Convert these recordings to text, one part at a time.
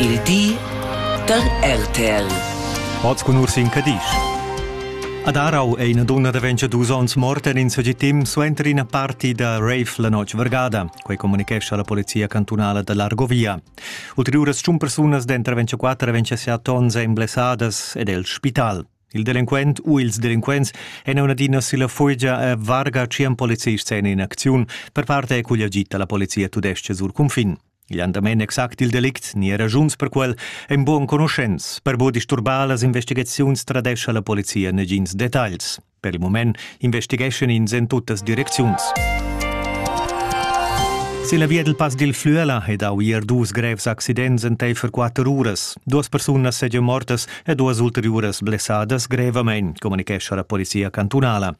Il di da RTL. Oz cun Ursin Cadisch. Ad Arau è ina dunna da 22 onns morta en in segitim suenter ina parti da rave la notg vargada. Quei communicescha la polizia cantunala da l'Argovia. Ulteriuras tschun persunas denter 24 e 27 onns ein blessadas ed el spital. Il delinquent u ils delinquents èn un'adina silla fugia e varga tschien polizists en in acziun per parte è cugl agit la polizia tudestga sur cunfin. Igl han damein exact il delict ni era raschuns per quel ein buc enconuschents. Per buca disturbar las investigaziuns tradescha la polizia negins detagls. Per il mument investigeschan ins en tuttas direcziuns. Se la via dil Pass dil Flüela è dau ier dus grevs accidents enteifer quatter uras. Duas persunas segian mortas e duas ulteriuras blessadas grevamein, comunichescha la polizia cantunala.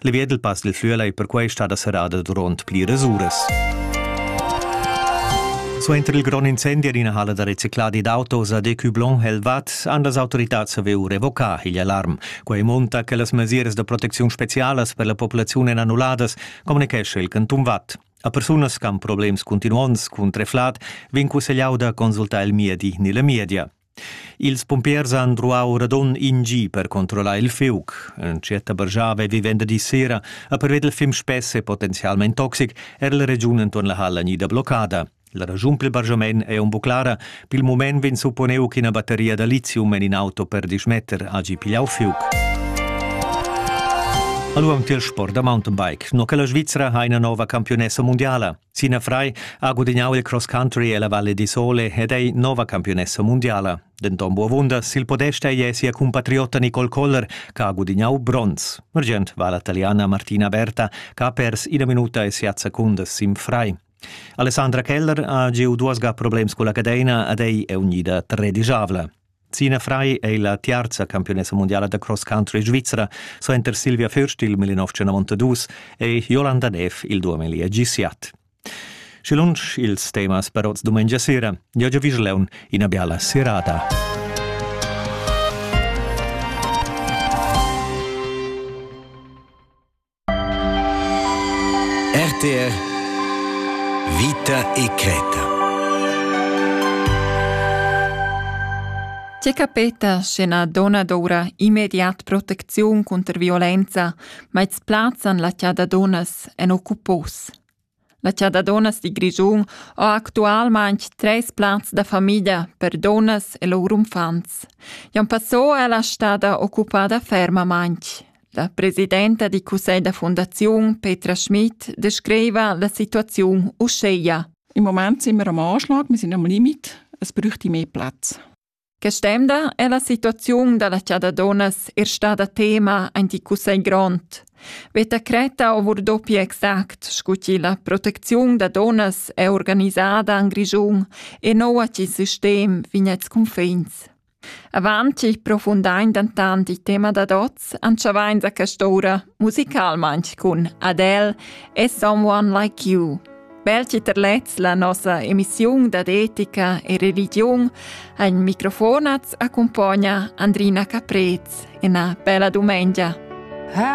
Le via del Pass del Flüela è perquai stada serrada durant pliras uras. Suenter il grond incendi en ina halla da recicladi d'autos a Decublon Helvat han las autoritats saviu revocar igl alarm. Quei monta che las mesiras da protecziun specialas per la populaziun èn annulladas, communicescha il canton Watt. A persunas che han problems continuonts cun treflat vegn cussegliau da consultar il miedi ni la media. Ils pumpiers han druau radund in gi per controllar il fiug. Entschiet bargiava vi venderdi sera a perveder il fim spess e potenzialmein toxic er la regiun entuorn la halla gnida bloccada. La ragiun pil bargiament ei un bu clara. Pil mument vegn supponeu ch'ina batteria da lithium en in auto per dismetter hagi pigliau fiug. Allora am til sport da mountainbike. No che la Svizzera ha ina nova campionessa mondiala. Sinafrai ha gudignau il cross country ella Valle di Sole ed ei nova campiunessa mundiala. Denton buavunda sil podest ei sia cumpatriotta Nicole Koller, che ha gudignau bronz. Argient va la taliana Martina Berta, che ha pers ina minuta e siat secundas sin frai. Alessandra Keller ha giu duas ga problems culla cadeina ed ei è unida tredigiavla. Zina Frei è la tiarza campiunessa mundiala da cross country svizra. Suenter Silvia Fürst il 1992 è Jolanda Neff il 2017. Și lunch ils temas per oz dumengia sera. Eu già vigileun ina biala serata. RTR Vita e creta C'è capeta sche na dona d'ora immediat protecziun cunter violenza, ma ils plazzan la chada donas en occupos. La chada dunnas di Grischun ha actualmain treis plazs da famiglia per dunnas e lur uffants. Jan Passò è la stada occupada fermamain. La presidenta di cussegl da fundaziun Petra Schmidt descriva la situaziun uschia. Im Moment sind wir am Anschlag, wir sind am Limit, es bräuchte mehr Platz. Quest'emda è la situaziun da la chada dunnas er stada tema en il cussegl grond. Veta Creta over dopi exact scu chi la protecziun da dunnas è organisada en Grischun e noua ch'il sistem vignets cunfins. Avant chi profundain dentant il tema da dots, anchavains a quest'ora musicalmain cun Adele e Someone Like You. Belgi ter lez la nossa emissiun dad etica e religiun ha in microfonats accumpagna Andrina Caprez. Ina bella dumengia. Ha